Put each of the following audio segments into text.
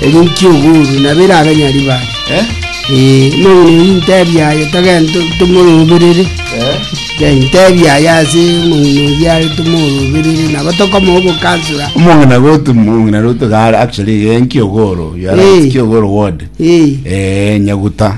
Erio nki'oboru, nabo erabe Nyaribari. Ee, nonye ne rintebi aye, togende to- tomoroberere. Ee, ntebi aye ase omong'ina oyio are tomoroberere, nabo tokomoa obokansora. Omong'ina gotu omong'ina roto gare actually eh, nki'ogoro, you are right, Ee. nki'ogoro ward. Ee, Eh, Nyaguta.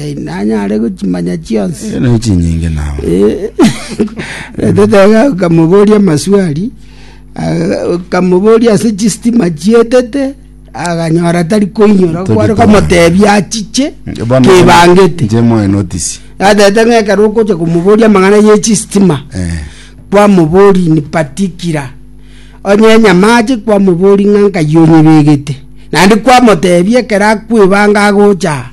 Teinanyare gochimanya chionsi. Ere naye chinyinge nao. Tetega okamoboria amaswali aga- okamoboria ase chistima chietete aganyora tari koinyora Tari kware koinyora. komotebia achiche Bono kebangete Nje moe notice. atete ng'a ekero okocha komoboria amang'ana ye chistima Eh. kwamobori ni patikira onye enyamache kwamobori ng'a nkai onyebegete naende kwamotebia ekero akwebanga agocha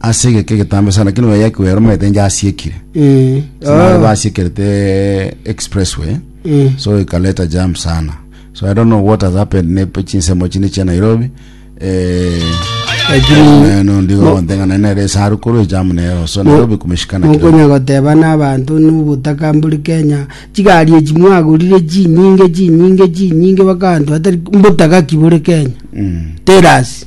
Ase egeka egetambe sana, lakini oyo yaikwa yaromanyete inche asiekire. Eh, Sinare ah, basiekerete expressway eh. so ikaleta jam sana so i don't know what has happened ne chinsemo chine chia nairobi eh, Lakini eh, no ndigo gonteng'ana nere esaru korwa ejamu nero so nairobi kumeshikana kidogo. nokonya goteba n'abanto nobotaka mbori kenya chigari echi mwagorire chinyinge chinyinge chinyinge bakanto atari mbotaka ki bore kenya Mm. terasi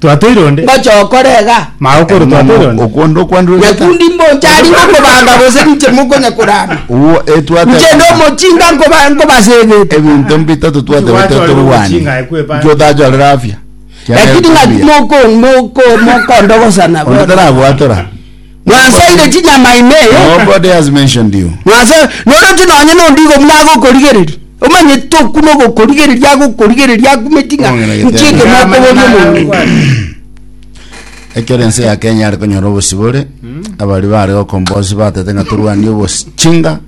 Twatoire onde. Ngocha okorega. Mao kore twatoire onde. Okwo ndokwandora egeta. Nyakundi mbonchariba kobanga gose ninche mokonya korama. Uo etwate. Inche ndomochinga nkoba nkobasebete. Ebinto mbita totwate gote torwane. Inche otachorera afya. Lakini ngaki moko moko mokondogosana. Onde taragwatora. Mwansaire chinyama ime. Nobody has mentioned you. Mwase, noroche nonye nondi igo buna agokorigereria. Omanyete okwo na ogokorigereria agokorigereria akumeti ng'a Ong'ina gete. nchie ekero Ng'amana nakoboria nare omonto. kwati. Ekero ense ya Kenya yare konyora obosibore, abari bare gokomboa ase batete ng'a torwanie obochinga,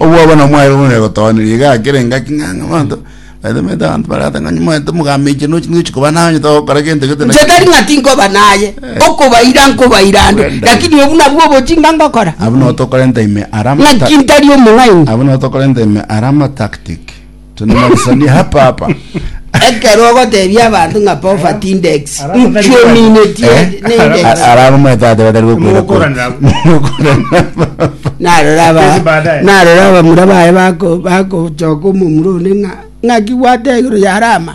obwabo na mwaye bone gotoneria iga akere engaki ng'a ng'a abanto baete mete abanto barata ng'a nyimwete mogameiche nochi nochi koba naye onye togokora gento gete na Inche tari ng'a tinkoba naye okobaira nkobaira ande Well done. lakini obwo nabwo obochie ng'a ngokora abwo nabo tokorenta ime ara ng'aki ntari omong'aini abwo nabo tokorenta ime ara amatactic Tunamalizanie hapa hapa. ekero ogotebia abanto ng'a poverty index Ara- ara- nchio ara- minetie Eh? n'index Ara- Arabo mwetate batari gokwira kwa. Mugokorana. Mugokorana. narora aba Kesi baadaye. narora abamura baye bako bakochoka omomura one ng'a ng'aki gwatee igoro yarama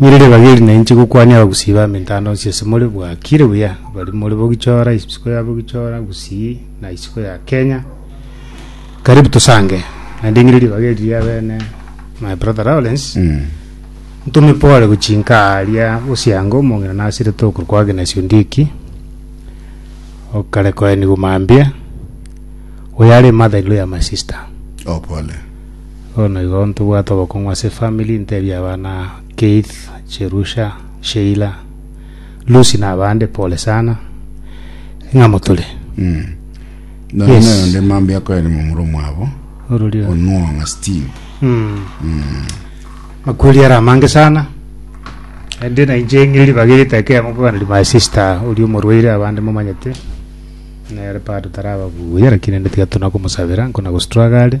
Nere ribaga eri nainche gokwania abagusii ba mintano onsi ase more bwakire buya bari more bogichora isiko ya bogichora gusii na isiko ya kenya karibu tosange naende ng'ire ribaga eri ria bene my brother lawrence ntome pore gochia inka aria osianga omong'ina nasirete okorwa kwa agnes ondieki okare koenigwa mambia oyo are mother in law ya my sister Oh, pole. Bono igo ntobwate obokong'u ase efamili, ntebie abana Keith, Cherusha, Sheila, Lucy na abande pole sana ng'a motore. Nonya Yes. naye onde mambia akoere momura omwabo Ororio. onwong'a Steve Makweri are amange sana. Ende na inche ng'iri ribaga erite ekemo nkoganeri my sister oria omorwaire abande momanyete. Nere part taraba buya lakini ende tiga tuna komosabera nkona gostruggle.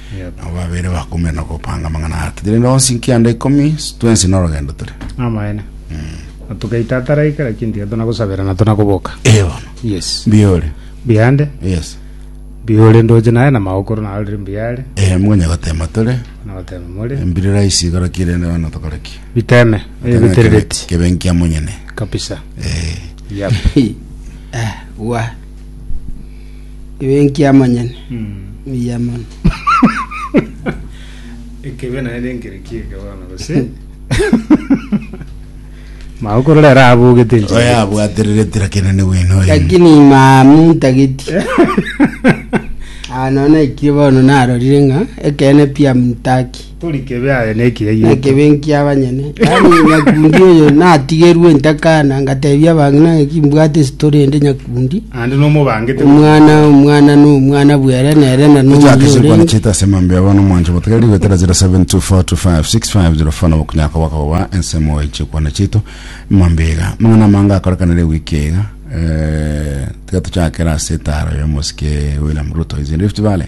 Nabo babere bakumire na gopanga amang'ana aa totiri nonsi nkianda ikomi, twensi norogendo tore. Amaene. Na togaita ataraika kera kintu giato na gosabera na tona koboka. Ee bono. Yes. Mbiore. Biande. Yes. Biore ndoche naye na maokoro na already mbiare. Ee mkonye gotema tore. Na gotema more. Mbire raisi igoro kire ne bono tokore ki? Biteme. Ee biterereti. Kebe nkia monyene. Kabisa. Ee. Yep. Wa. Ebe enkiamonyene mbuya mono. Ekebe naye nenkere ki eke bono gose? Mao korora ere abogete enchera. oyo abwatererete lakini ni bwino oyo. Lakini mamu ntageti. Ah, nono ekire bono narorire ng'a ekeene pia mtaki. Tori kebe aye nekiya gieto. Nekebe nkia abanyene. Yaani nyakundi oyo natigerwe intakana ngatebia abang'ina ng'aki mbwate esitori ende nyakundi. Ande nomobangete. Omwana omwana no omwana bwere nere na no Tuchake oyo chikwane orenge. chita ase emambia yabo nomwancho gotega rigo etera 0724256554 nabo okunyaka bakagoba ensemo ya chikwane chitu emambia iga amang'ana amange akorekanire ewiki iga eh, tiga tuchakere ase etaro ya omosike William Ruto is in Rift Valley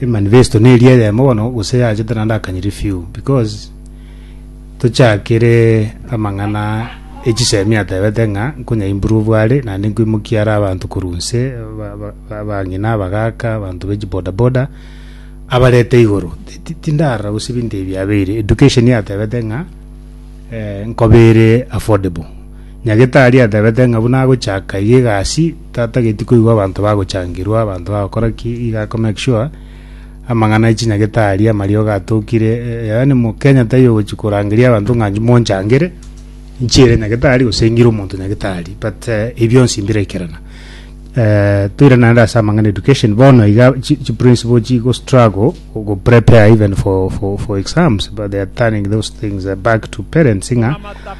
Eh, manifesto neri eyemo bono gose yachete naende akanyiri few because tochakire amang'ana echisemi atebete ng'a nkonya improve are naende nkoimokia are abanto korwa nse ba- ba- ba- abang'ina abagaka abanto bechi bodaboda abarete igoro Ti- ti- tindarora gose ebinto ebi biabeire education yatebete ng'a eh, nkobere affordable Nyagetari atebete ng'a buna agochaka iga egasi, tatageti koigwa abanto bagochangerwa, abanto bagokora ki, iga akomake sure amang'ana e chinyagetari, amariogo atokire, eh, yaani Mokenya taiyo ogochi korangeria abanto ng'a inche monchangere, inche ere nyagetari gose ng'ire omonto nyagetari, but eh, ebi bionsi mbire ekerana. Eh, toira naende ase amang'ana e education, bono iga chi chi principle chigo struggle go prepare even for, for, for exams, but they are turning those things back to parents ng'a.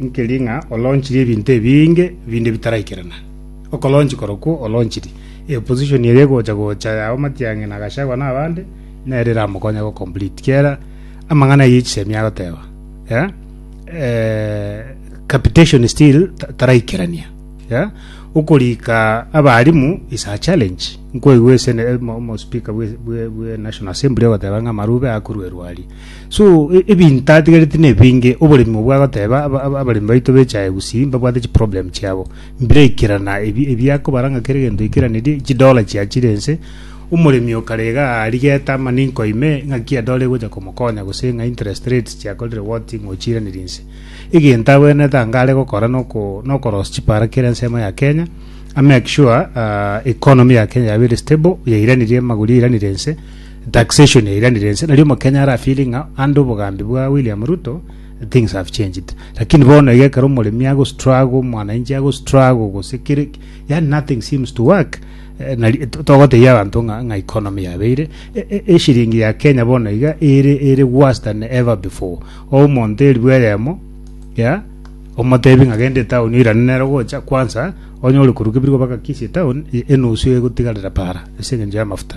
Nkeri ng'a oloonchiri ebinto ebinge binde bitaraikerana. Okoloonchi korokwo oloonchiri, e opposition eria egocha gocha yao Matiang'i na Gachagua na abande, nere eramokonye go complete. Kera amang'ana ayio chisemi agoteba, yeah, eh, capitation still ta- taraikerania. Yeah, okorika abaalimu is a challenge. Nkoigwa esene, mo- mo speaker bwe, bwe, bwe National Assembly ogoteba ng'a amarube akorwa erwari. So e- ebinto atigareti nebinge, oboremi obwo agoteba aba- aba- abaremi baito bechaye gusii mbabwate chiproblem chiabo. Mbiraikerana ebi- ebiakobara ng'a kera egento oikeranerie, chidola chiachire ense, omoremi okarega aarigete ama ninko ime ng'aki edola egocha komokonya gose ng'a interest rates chiakorire what ng'a ochiiranerie inse. Egento abwenerete anga are gokora noko nokorosia chipara kera ensemo ya Kenya, amake sure ah, economy ya Kenya yabeire stable, yairanirie amagori yairanirie ense, Taxation yairanire ense, nario omokenya ara feeling ng'a under obogambi bwa William Ruto things have changed. Lakini bono iga ekero omoremi ago struggle, omwanainchi ago struggle gose kere yani nothing seems to work. Eh, nari to- togotebia abanto ng'a ng'a economy yabeire e- e- eshiringi ya Kenya bono iga ere ere worse than ever before. O omonto eribu eyemo ya omotebi ng'a gende town oirane nero gocha kwanza onye ore koruga ebirogo baka Kisii town e- enusu egotigarera para ase eng'encho y'amafuta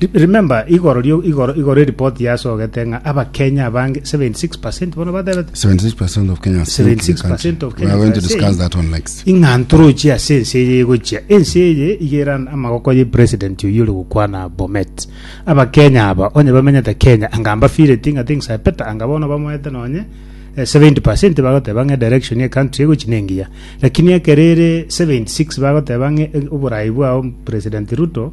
Re- Remember, igoro rio igoro igoro eripoti yasogete ng'a abakenya abange 76% bono batebete 76% of Kenyans think the 76% country. of We are Kenyans going to are discuss saying- that one next. ing'a ntorochi ase ense eye egochia ense eye igeran amagoko ye president oyo ore gokwana bomet abakenya aba onye bamenyete kenya anga mbafireti ng'a things are better anga bono bamoete nonye eh, 70% bagoteba ng'a direction ye country egochi nengiya lakini ekerere 76 bagoteba ng'a eh, oborai bwao president ruto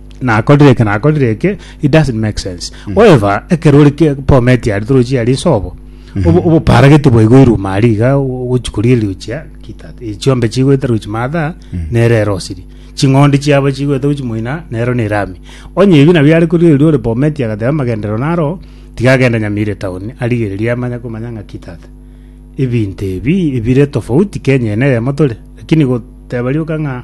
nakorire eke nakorire eke it doesn't make sense however ekero ori ke- bomet yari torochi yari sobo obo- oboparageti bwaigoirwe mari iga gochikoria eriochia kita chiombe chigoeta rochi matha nere ero osiri ching'ondi chiabo chigoeta gochi moina nero nere ami onye ebi nabio are koria oria ore bomet agateba amagenderero naro tiga agende nyamire town arigererie amanye komanya ng'a ki tata ebinto ebi ebire tofauti kenya ene eyemo tore lakini goteba rioka ng'a.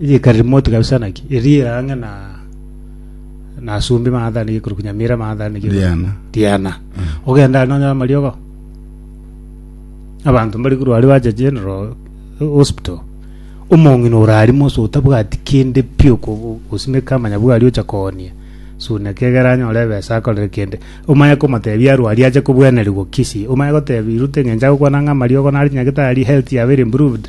Erika remote kabisa naki eri ang'e na na asumbi mang'atani gikuru kunyamira mang'atani gikuru Riana. Diana ogenda ari nonyora amariogo abanto mbari kuru ari bacha general eh, hospital omong'ina orari moso otabwati kende pi oko- osimeka amanya bwari ocha koonia suna kegera anyore ebesa akorere kende omanye komotebia arwari ache kobwenerigwa kisi omanye gotebia irute ng'encha gokwana ng'a amariogo nari nyagetari health yaba ere improved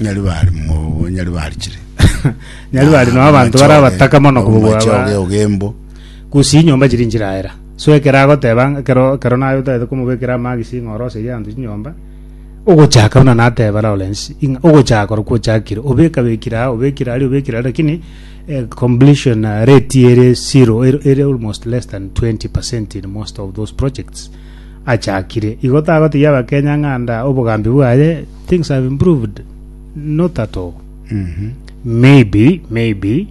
Nyari bari mo nyari bari chire. Nyari bari no abanto bare abataka mono kobogwa Omache aba- oge ogembo. gusi nyomba chiri nchiraera so ekero agoteba ng'a kero kero naye otagete komobekera amagisi ng'a oroserie abanto chinyomba ogochaka buna nateba Lawrence ing'a ogochaka ore kwochakire obekabekire aa obekire aria obekire aria lakini eh, completion eh, rate ere zero ere ere almost less than 20 percent in most of those projects achakire igo tagotegia abakenya ng'a nda obogambi bwaye things have improved not at all Mhm. maybe maybe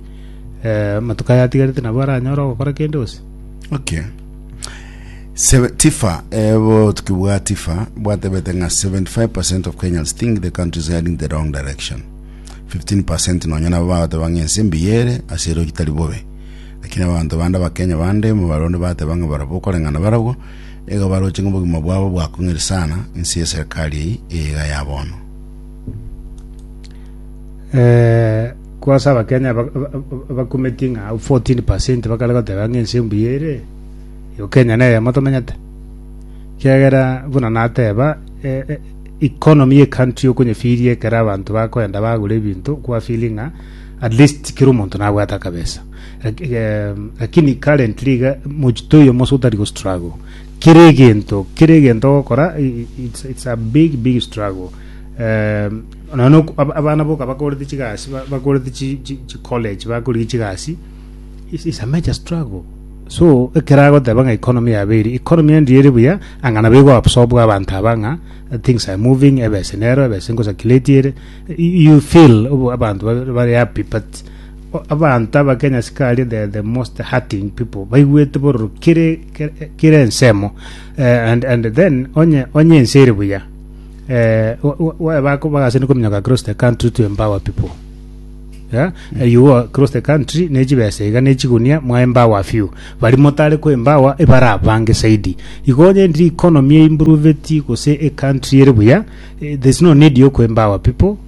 eh, amatuko ayatigarete nabo aranyore ogokora kende gose okay Seve- tifa ebo tukibwa tifa bwatebete ng'a 75 of kenyans think the country is heading the wrong direction 15 nonya nabo bagateba ng'a ense mbiyere ase ero gitari bobe lakini abanto bande abakenya bande mu barundi bateba ng'a barabwo okoreng'ana barabwo Nigo baroche ng'a obogima bwabo bwakong'iri sana inse y'eserekari eyio eyeiga ya bono. Eh, kwase abakenya ba- ba- ba- bakumeti ng'a 14 bakare goteba ng'a ense mbuya ere yo kenya neyemo tomenyete kiagera buna nateba eh, eh, economy ye country okonyefiria ekero abanto bakoenda bagura ebinto kwafili ng'a at least kera omonto nabwate akabesa Lak- eh, lakini currently iga mochito oyo mose otari go struggle kera egento kera egento ogokora i- i- it's, it's a big big struggle um, nono oku- ab- abana boka bakorete chigasi ba- bakorete chi- chi chi college bakorigia chigasi it's, it's a major struggle so ekera agoteba ng'a economy yabe eri economy endi ere buya anga nabo egoabsorbwa abanto aba ng'a uh, things are moving ebese nero ebese ngosakiletie ere Y- you feel obo- abanto ba- bare happy but Abanto abake nyasikari the, the most hurting people baigwete bororo kere kere, kere ensemo eh, and, and then onye onye ense ere buya eh, wa- wa- wa- bako- bagasini kominyoka across the country to empower people yeah? Eh, you go across the country nechibesa iga nechigunia mwaembawa few bari motare koembawa ebara abange saidi igo onye ndi economy eimproveti gose ecountry ere buya eh, there's no need yokoembawa people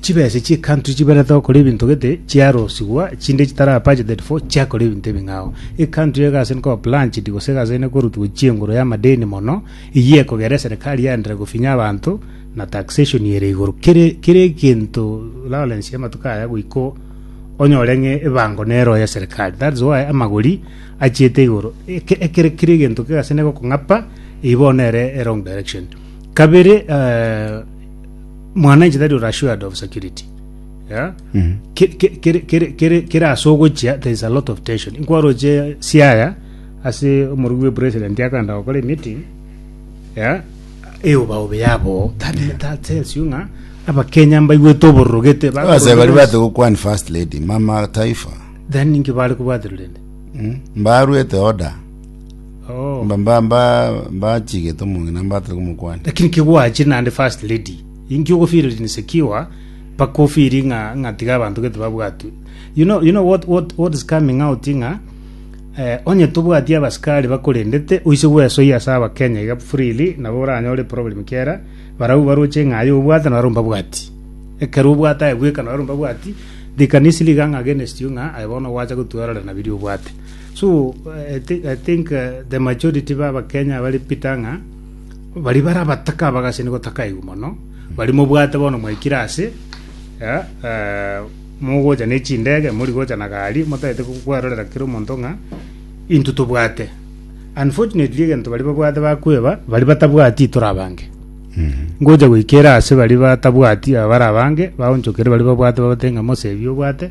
chibese chi'ecountry chiberete gokora ebinto gete chiarosigwa chinde chitara budgeted for chiakora ebinto ebing'ao ecountry egase nkoba planchedi gose egase ene korutwa chienguru y'amadeni mono eyio ekogera eserikari yaendera gofinya abanto na taxation ere igoro kere kere egento Lawrence y'amatuko aya goiko onyore ng'e ebango nero ya serikari that's why amagori achiete igoro eke ekere kere egento kegase negokong'apa eyio bono ere erong direction kabere eh, mwana inche tari ore assured of security yeah? Mhm. Ke- ke- kere- kere- kere kere ase ogochia there is a lot of tension inkwaroche siaya ase omorugi bwe president akanda gokora emeeting yeah? eobaobe yabo that, that tells you ng'a abakenya mbaigwete obororogete base bari bate gokwan first lady mama taifa then inki bare kobwatererende mbarwete order Mba mba mba mbachigete omong'ina mbatari komokwana. Lakini kigwache naende first lady. Inki ogofeeling insecure mpaka ofeeli ng'a ng'a tiga abanto gete babwatwe. You know you know what what what is coming out ng'a eh, onye tobwati abasikari bakorendete oise gwesoia ase abakenya iga freely nabo oranyore problem kera barau baroche ng'a aye obwate naro mbabwati. Ekero obwate aye bweka naro mbabwati they can easily gang against you ng'a aye bono gwacha gotwerorera na biria obwate. So I think the majority ba Abakenya bari Peter ng'a bari bara abataka abagachene gotaka aigwe mono bari mobwate bono mwaikire ase eh, eh, mogocha ne chindege mori gocha na gari motagete kwarorera kera omonto ng'a into tobwate unfortunately egento bari babwate bakweba bari batabwati tore abange ngocha goikera ase bari batabwati abara abange baonchokere bari babwate babate ng'a mosebi obwate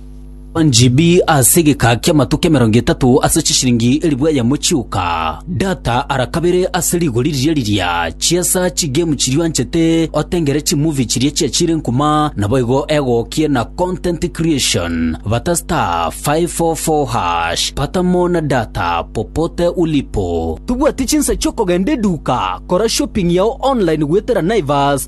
Njibi ase egeka ki'amatuko emerongo etato ase chishiringi elifu eyemo chioka. Data ara kabere ase rigori riria riria. Chiesa chigame chiria anchete otengere chimovie chiria chiachire nkuma naboigo egokie na content creation. Bata star 544 hash. Pata mo na data popote ulipo. Tobwati chinsa chi'okogenda eduka, kora shopping yao online goetera Naivas